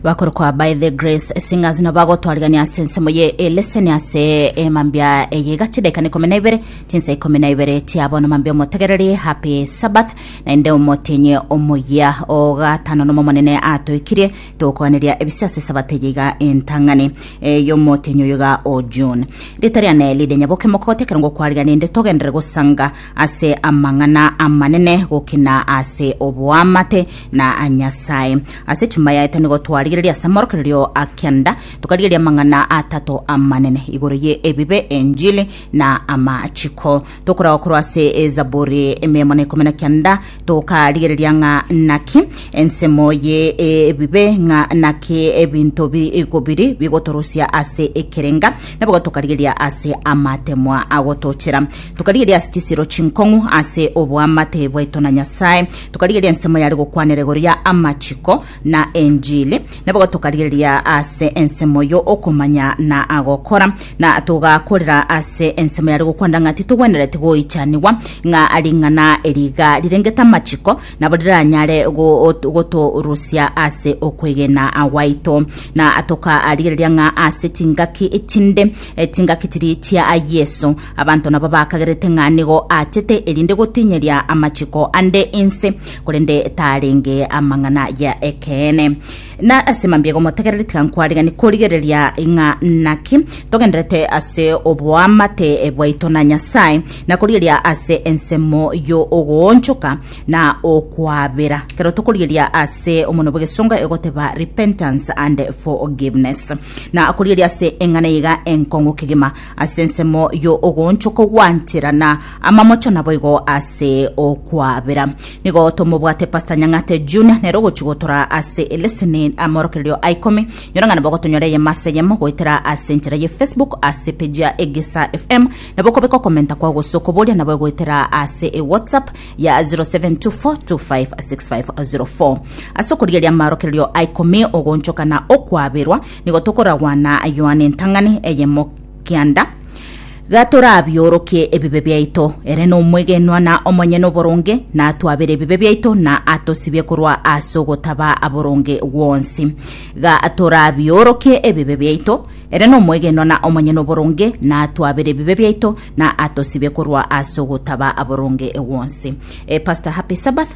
bakoro kwa by the grace singers no bagotwarigania ase ensemo ye eleseni ase emambia eye igachi daika na ikomi na ibere chinsa ikomi na ibere chiabono mambia omotegereri happy sabbath naende omotienyi omoyia ogatano nomo monene atoikirie tokoaneria ebise ase sabate eye iga entang'ani eh, yomotienyi oyo iga o june rita riane lide nyaboke mokoti ekero ngokwarigania inde togendere gosanga ase amang'ana amanene gokina ase oboamate na a Nyasae. Ase chuma yaye tanigo twarigereria ase amorokererio a kenda, tukarigereria amang'ana atato amanene igoro ye ebibe, enjili, na amachiko. Tokoragwa korwa ase ezaburi emeemo na ikomi na kenda, tokarigereria ng'a naki ensemo ye ebibe, ng'a naki ebinto bigo biri bigotorosia ase ekerenga, na boigo tokarigereria ase amatemwa agotochera. Tukarigereria ase chisiiro chinkong'u ase oboamate bwaito na Nyasae, Tokarigereria ensemo yare gokwanera igoro ya amachiko na enjili, naboigo tokarigereria ase ensemo yo okomanya na gokora, na togakorera ase ensemo yare gokwanera ng'a titogwenereti goichanigwa, ng'a ring'ana eri iga rirengete amachiko nabo riranyare go- gotorusia ase okwegena gwaito. Na tokarigereria ng'a ase chingaki chinde, eh, chingaki chiria chia Yeso, Abanto nabo bakagerete ng'a nigo aachete erinde gotinyeria amachiko ande inse, korende tarenge amang'ana ya ekeene. Na ase mambia igomotegereri tiga nkwarigani korigereria ng'a naki togenderete ase oboamate bwaito na Nyasae, na korigeria ase ensemo y'ogoonchoka na okwabera, ekero tokorigeria ase omonwa bw'egesongo egoteba repentance and forgiveness, na korigeria ase eng'ana iga enkong'u kegima Ase ensemo y'ogoonchokwa gwanchera na amamocho naboigo ase okwabera. Nigo tomobwate Pastor Nyang'ate Junior nere ogochigotora ase eleseni amorokererio a ikomi. Nyora ng'a nabo gotonyora eyemo ase eyemo goetera ase enchera ye Facebook ase page ya Egesa FM. Nabo okobeka okomenta kwao gose okoboria nabo egoetera ase e WhatsApp ya 0724256504. Ase okorigeria amarokererio a ikomi ogoonchoka na okwaberwa Nigo tokoragwana ayio ane entang'ani eyemo kianda, gatorabiorokie ebibe biaito. Ere nomwegenwa na omonyene oboronge, natwabere ebibe biaito na atosibie korwa ase ogotaba aboronge gwonsi. Gatorabiorokie ebibe biaito, ere nomwegenwa na omonyene oboronge, natwabere ebibe biaito na atosibie korwa ase ogotaba aboronge gwonsi. Eh, Pastor, happy Sabbath.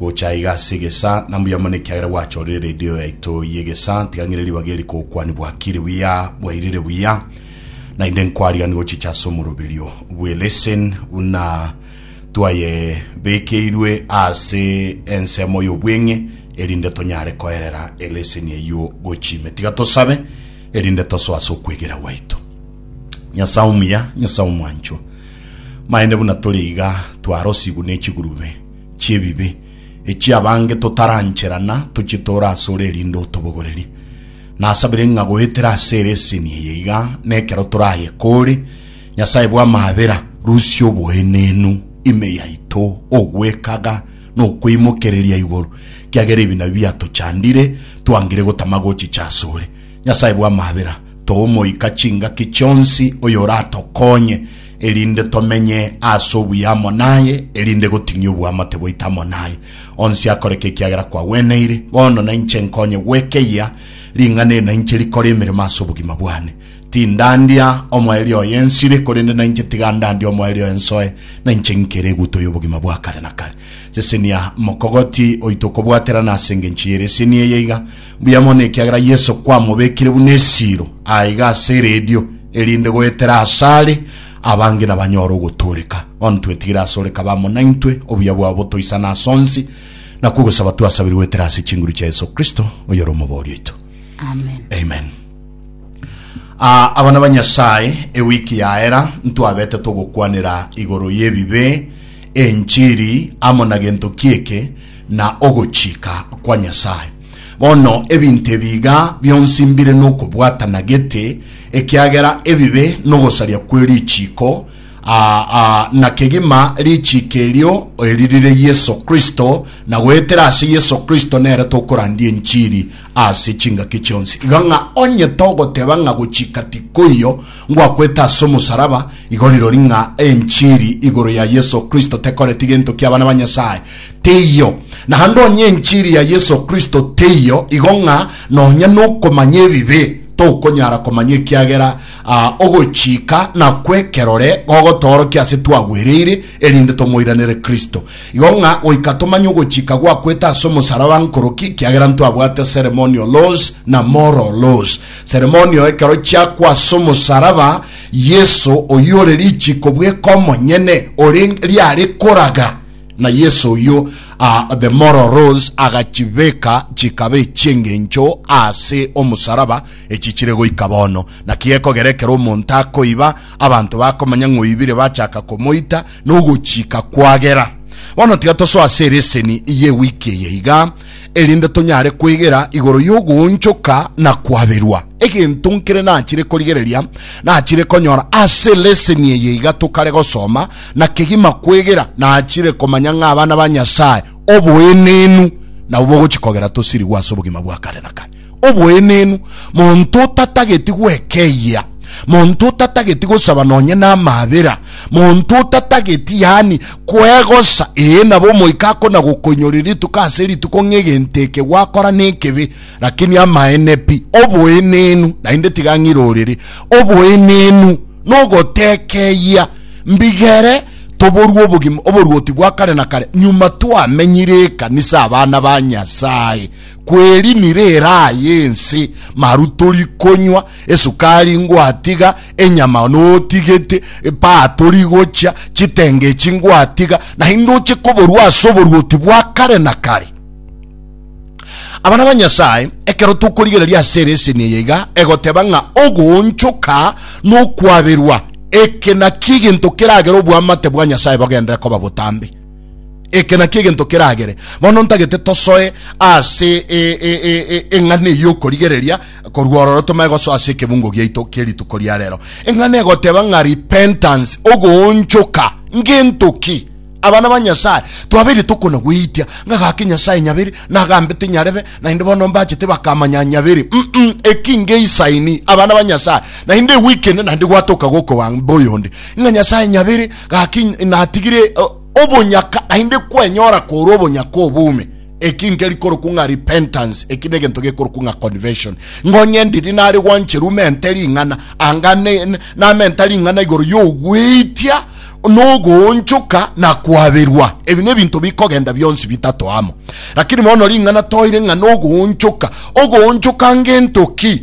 Gocha iga ase egesaa, na mbuya mono ekiagera gwachorire redio yaito y'egesaa, tiga ng'ire ribaga eri kokwani bwakire buya, bwairire buya, naende nkwarigani gochicha ase omoroberio bwe lesson buna twayebekeirwe ase ensemo y'obweng'e, erinde tonyare koerera eleseni eyio gochia ime. Tiga tosabe erinde tosoe ase okwegera gwaito. Nyasae omuya, Nyasae omwanchwa, maene buna tore iga twarosigwe ne chigurube, chi'ebibe, echia abange totaranchera na tochitoora asore erinde otobogorerie. Nasabire ng'a goetera ase ere eseni eye iga nekero toraye kore, Nyasae bw'amabera, rusia oboenenu ime yaito, ogwekaga, na okweimokereria igoro, kiagera ebinabi biatochandire, twangire gotama gochicha asore. Nyasae bw'amabera, toa Omoika chingaki chionsi, oyoratokonye, erinde tomenye ase obuya amo naye, erinde goting'ia oboamate bwaito amo naye. Onsi akoreke ekiagera kwagweneire, bono nainche nkonye gwekeyia ring'ana eri nainche rikore emeremo ase obogima bwane. Tindandia omoerio oye ensire, korende nainche tiga ndandie omoerio oye nsoe, nainche ngikere eguto y'obogima bwa kare na kare. Sesenia mokogoti oito okobwaterana ase engencho y'ere eseni eye iga, Mbuya mono ekiagera Yeso kwamobekire buna esiiro aa iga ase eredio, erinde goetera asare abange nabanyore ogotooreka. Bono twetigire ase ore kabamo naintwe, obuya bwao botoisane ase onsi, nakwo ogosaba twasabire goetera ase chinguru chia Yeso Kristo, oyore Omobori oito. Amen. Amen. Ah, abana ba Nyasaye, ewiki yaera ntwabete togokwanera igoro y'ebibe, enchiri, amo na gento ki'eke, na ogochika kwa Nyasae. Bono ebinto ebi iga bionsi mbire nokobwatana gete, ekiagera ebibe nogosaria kwe richiiko, aa, aa, na kegima richiiko erio eri rire Yeso Kristo, na goetera ase Yeso Kristo nere tokorandia enchiri ase chingaki chionsi, iga ng'a onye togoteba ng'a gochika tikoiyo ngwakwete ase omosaraba, igo rirori ng'a enchiri igoro ya Yeso Kristo tekoreti gento ki'abana ba Nyasaye? Teiyo. Naende onye enchiri ya Yeso Kristo teiyo, igo ng'a nonya nokomanya ebibe tokonyara komanya ekiagera ogochika nakwo ekerore gogotoorokia ase twagwereire, erinde tomoiranere Kristo, igo ng'a goika tomanye ogochika gwakwete ase omosaraba nkoroki, kiagera ntwabwate ceremonial laws na moral laws. Ceremonial ekero chiakwa ase omosaraba, Yeso oyio ore richiko bweka omonyene ore riare koraga, na Yeso oyio ah, the moral laws agachibeka chikaba echi'engencho ase omosaraba, echi chire goika bono. Naki gekogera ekero omonto akoiba, Abanto bakomanya ng'oibire bachaka komoita nogochika kwagera. Bono tiga tosoe ase ereseni y'ewiki eye iga, erinde tonyare kwegera igoro y'ogoonchoka na kwaberwa. Egento nkere nachire korigereria nachire konyora ase ereseni eye iga tokare gosoma na kegima kwegera, nachire komanya ng'a abana ba Nyasae oboenenu nabo bogochia kogera tosirigwe ase obogima bwa kare na kare. Oboenenu, monto otatageti gwekeyia, monto otatageti gosaba nonye namabera, monto otatageti, yani kwegosa, ee, nabo omoika akona gokoinyore rituko ase rituko ng'egento eke gwakora nekebe, lakini amaene pi. Oboenenu, naende tiga ng'irorere, oboenenu nogotekeyia, mbigere toborwe obogima, oboruoti bwa kare na kare, nyuma twamenyire ekanisa, abana ba Nyasae. Kwerinire eraa y'ense, maru torikonywa, esukari ngwatiga, enyama notigete, epaa torigochia, chitenge echi ngwatiga, naende oche koborua ase oboruoti bwa kare na kare. Abana ba Nyasae, ekero tokorigereria ase ereseni eye iga egoteba ng'a ogoonchoka nokwaberwa, eke nakio egento keragere oboamate bwa Nyasae bogenderere koba botambe. Eke nakio egento keragere bono ntagete tosoe ase eng'ana eye y'okorigereria korwa ororo tomae gosoa ase ekebungo giaito kie rituko ria rero. Eng'ana egoteba ng'a repentance, ogoonchoka. Ngento ki? Abana ba Nyasae twabeire tokona goitia ng'a gaki Nyasae nyaberi na agambete nyarebe, naende bono mbachete bakamanya nyaberi. Mm-mm, eki ngeisaini, abana ba Nyasae, naende ewiki ende naende gwatoka gokobaa boyonde ng'a Nyasae nyaberi, Gaki natigire obonyaka, naende kwenyora kore obonyaka obume, eki nkeri korokwa ng'a repentance, eki negento gekorokwa ng'a conversion. Ngonye ndiri nare gwancheru mente ring'ana, anga namenta ring'ana igoro yogweitia nogoonchoka na kwaberwa. Ebi nebinto bikogenda bionsi bitato amo. Lakini bono ring'ana toire ng'a nogoonchoka. Ogoonchoka ngento ki?